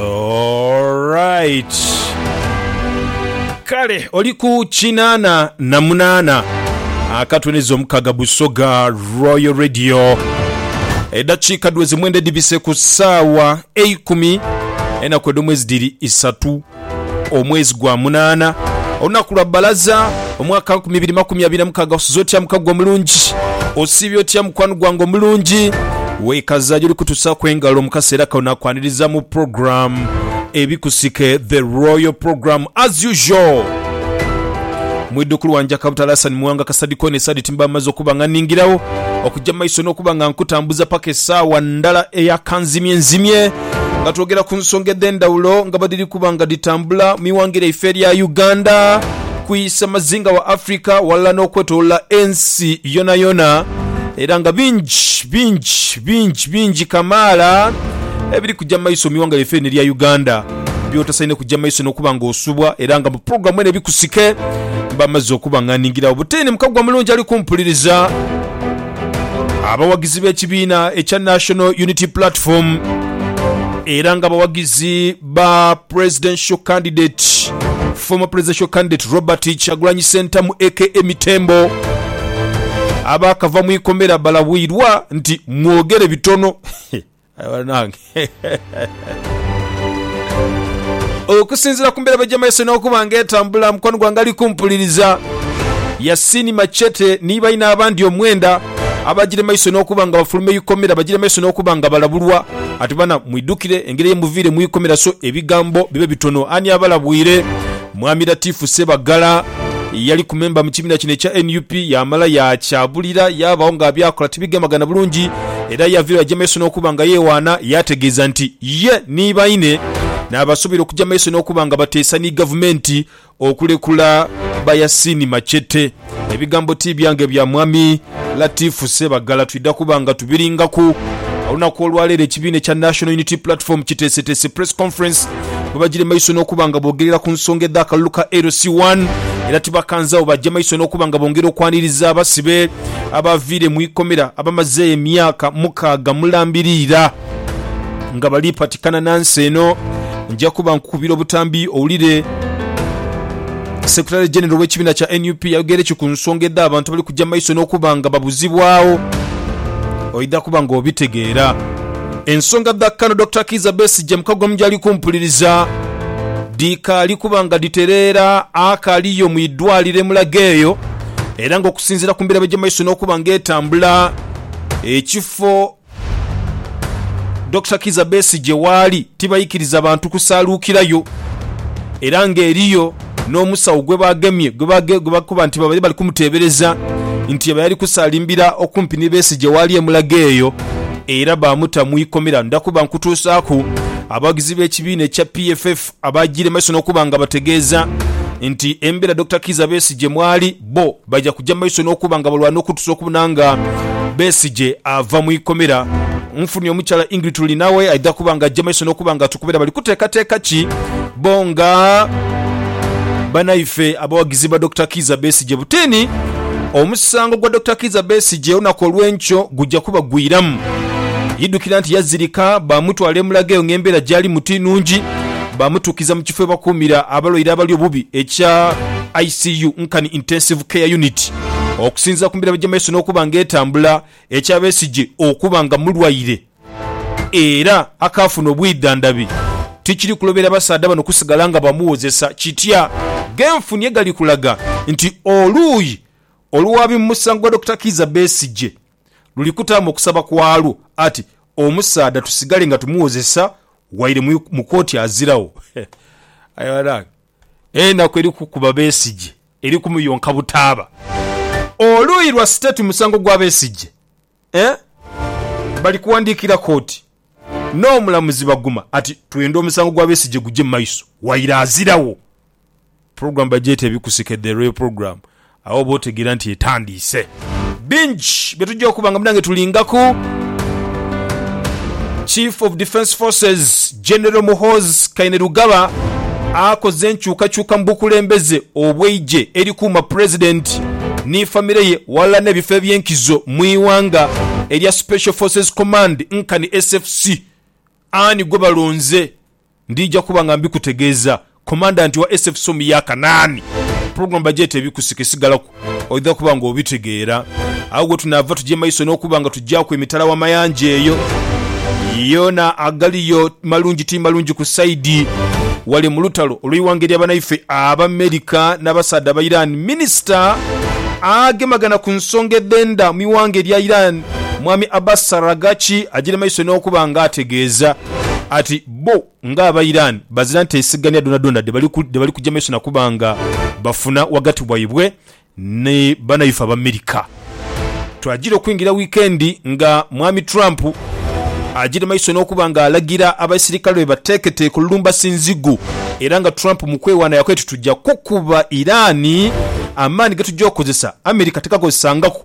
Alright. Kale oli ku kinaana na munaana akatwe neza omukaga Busoga Royal Radio. Edakiika dweze mwenda edibise ku saawa eikumi enaku edh'omwezi dhiri isatu omwezi gwa munaana olunaku lwa balaza omwaka nkumi ibiri makumi abiri na mukaaga osuze otya muka gwe omulungi osiibye otya mukwano gwange omulungi wekaza gyoli kutusaku engalo mukaseera kano nakwaniriza mu program ebikusike the royal program as usual mwidukulu wanje akabutala Hassan Muwanga kasadikoni esadi timba amaze okuba nga ningirawo okujja maiso n'okuba nga nkutambuza paka esaawa ndala eya kanzimye nzimye nga twogera ku nsonga edh'endhawulo nga bwe dhiri kuba nga dhitambula mu iwanga lyaife erya Uganda ku isamazinga wa Africa walala n'okwetolola ensi yonayona era nga bingi bingi bingi bingi kamaala ebiri kujja mu maiso mu iwanga lyaife lino erya Uganda byotasaine kujja maiso n'okuba nga osubwa era nga mu pulogulaamu eno ebikusike mba mazze okubang'aningirawo buteni mukaggwa mulungi ali kumpuliriza abawagizi b'ekibiina ekya National Unity Platform era nga abawagizi ba presidential candidate former presidential candidate Robert Kyagulanyi Sentamu aka Mitembo abaakava mu ikomera balabwirwa nti mwogere bitono Aye banange okusinzira ku mbeera bajamaise n'okuba nga etambula mukwano gwange ali kumpuliriza Yasin Machete ni baine abandi omwenda Abagire maiso n'okuba nga bafuluma eikomera bagire maiso n'okuba nga balabulwa. Ati bana mwidhukire engeri ye muviire mu ikomera so ebigambo bibe bitono. Ani abalabwire? Mwami Latif Ssebagala eyaliku memba mu kibiina kino ekya nup yaamala yaakyabulira yaabagho nga byakola tibigemagana bulungi era yaviiragho yaja maiso n'okuba nga yeewaana yaategeeza nti ye ni baine naabasuubira okuja maiso n'okuba nga bateesa ni gavumenti okulekula ba Yasin Machete. Ebigambo ti byange bya Mwami Latif Ssebagala. Twidha kuba nga tubiringaku olunaku olwaleero. Ekibiina ekya National Unity Platform kiteeseteese Press Conference bwebagire maiso n'okuba nga boogerera ku nsonga edh'akalulu ka LC One era tibakanzagho baje maiso n'okuba nga bongera okwaniriza abasibe abaaviire mu ikomera abamazeeyo emyaka mukaaga mulambiriira. nga bali patikana na nsi eno, nja kuba nkukubira obutambi owulire. Secretary General w'ekibiina kya nup yayogeire ki ku nsonga edh'abantu abali kugya mu maiso n'okuba nga babuzibwagho? Oidha kuba nga obitegeera. Ensonga dha Kano Dokita Kiiza Besigye mu Kagwamu gy'ali kumpuliriza dhikaali kuba nga dhitereera akaliyo mu idwaliro e Mulago eyo era ng'okusinziira ku mbeera ebigya mu maiso n'okuba nga etambula, ekifo Dokita Kizza Besigye waali tibaikiriza bantu kusaaluukirayo era ng'eriyo n'omusawo gwe baagemye gwe bakoba nti babaire bali kumuteebereza nti yaba yali kusaalimbira okumpi ni Besigye waali e Mulago eyo era baamuta mu ikomera. Nda kuba nkutuusaaku abawagizi b'ekibiina ekya PFF abaagiire mu maiso n'okuba nga bategeeza nti embeera Dokita Kizza Besigye mwali bbo Baja kuja mu maiso n'okuba nga balwana okutusa okubona nga Besigye ava mu ikomera. Nfunye omukyala Ingrid Turinawe aidha kuba nga aja mu maiso n'okuba nga atukubira bali kuteekateeka ki bo nga banaife abawagizi ba Dokita Kiiza Besigye. Butiini, Omusango gwa Dokita Kiiza Besigye olunaku olw'enkyo guja kubagwiramu. Idhukira nti yazirika baamutwala e Mulago eyo ng'embeera gy'alimu ti nnungi, baamutuukiza mu kifo we bakuumira abalwaire abali obubi ekya. ICU, Nkani Intensive Care Unit, okusinzira ku mirembe gy'emaiso n'okuba nga etambula, ekya Besigye okuba nga mulwaire era akaafuna obwidhandhabi tikiri kulobera basaadha bano kusigala nga bamuwozesa kitya. G'enfuni egali kulaga nti oluuyi oluwaabi mu musango gwa Dokita Kiiza Besigye luli kutaamu okusaba kwalwo ati omusaadha tusigale nga tumuwozesa waire mu kooti aziragho. Aye banange. Enaku eri kukuba Besigye eri kumuyonka butaaba. Oluuyi lwa state musango gwa Besigye eh bali kuwandiikira kooti n'omulamuzi Baguma ati twenda omusango gwa Besigye gugye mu maiso waire azirawo. Program bagyeta ebikusike the real program Agho oba otegeera nti etandiise. Bingi bye tugya okuba nga munange tulingaku. Chief of Defence Forces General Muhoozi Kainerugaba akoze enkyukakyuka mu bukulembeze obw'eigye erikuuma Pulezidenti ni famire ye ghalala n'ebifo eby'enkizo mu ighanga erya Special Forces Command nkani SFC. Ani gwe balonze? Ndija kuba nga mbikutegeeza. Komandanti wa SFSOM ya Kanaani. Pulogulaamu bagyeta Ebikusika esigalaku oidha kuba nga obitegeera. Agho ghetunaava tugye maiso n'okuba nga tugyaku emitala w'amayanja eyo yoona agaliyo malungi ti malungi ku saidi wale mu lutalo olw'eighanga erya banaife Abamerika n'abasaadha ba Iran. Minisita agemagana ku nsonga edh'enda mu ighanga erya Iran, Mwami Abbas Araghchi agyire maiso n'okuba nga ategeeza. ati bbo nga aba Iran bazira nteesigania dhoonadhoona dhebali kuja maiso nakuba nga bafuna ghagati waibwe ni banaife Abamerika. Twagira okwingira wiikendi nga Mwami Trump agire maiso n'okuba nga alagira abaisirikale be bateeketeeke olulumbasi nzigu era nga Trump mu kwewaana yakola ati tuja kukuba Iran amaani ge tuja okukozesa Amerika tegaakozesangaku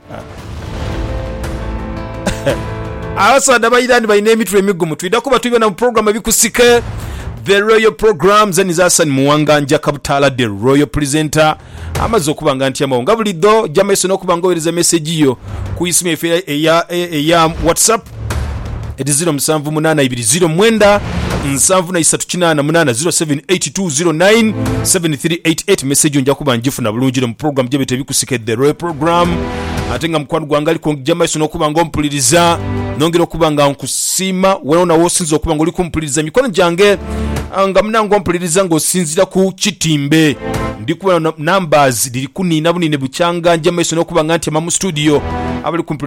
Abasaadha ba Iran balina emitwe emigumu. Twidha kuba tuli bona mu program ebikusike. The Royal Program zeni za Hassan Muwanga Njaka Butaala The Royal Presenter amaze okuba nga ntyamawo nga bulidho ja maiso n'okuba nga owereza mesegi yo ku isimu yaife eya, eya, eya WhatsApp Edi 0 musanvu munaana ibiri 0 mwenda nsanvu na isatu kinaana munaana 0782097388 message yo nja kuba njifuna bulungi ino mu program gyebeta ebikusika e The Royal Program ate nga mukwano gwange ali kungija maiso nokuba nga ompuliriza nongera okuba nga nkusiima wonawona wosinza okuba nga oli kumpuliriza mikono gyange ah, nga munange ompuliriza nga osinzira ku kitimbe ndi kubona numbers dhiri kuniina buniine bukyanga nja maiso nokuba nga ntyama mu studio abali kumpuliriza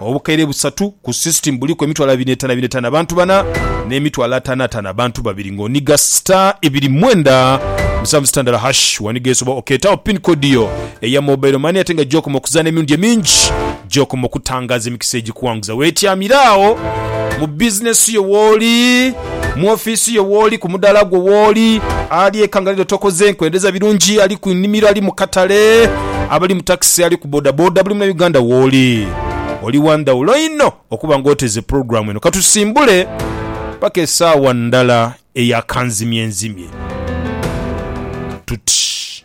Obukaire busatu ku system buliku emitwalo abiri n'etaano abiri n'etaano abantu bana, n'emitwalo ataano ataano abantu babiri nga oniga star ibiri mwenda musanvu star ndala hash waniga ensi oba okeetagho pin code yo eya mobile money ate nga gy'okoma okuzaana emirundi emingi gy'okoma okutangaaza emikisa egikuwanguza weetyamire agho mu bizinesi yo wooli. mu ofiisi yo wooli, ku mudaala gwo wooli, ali eka nga lero tokoze nkwendereza birungi, ali ku nnhimiro, ali mu katale, abali mu takisi, ali ku bodaboda, buli Munauganda wooli. Oli wa ndhawulo inho okuba nga oteze pulogulaamu eno. Katusimbule paka esaawa ndala eya kanzimyenzimye tuti.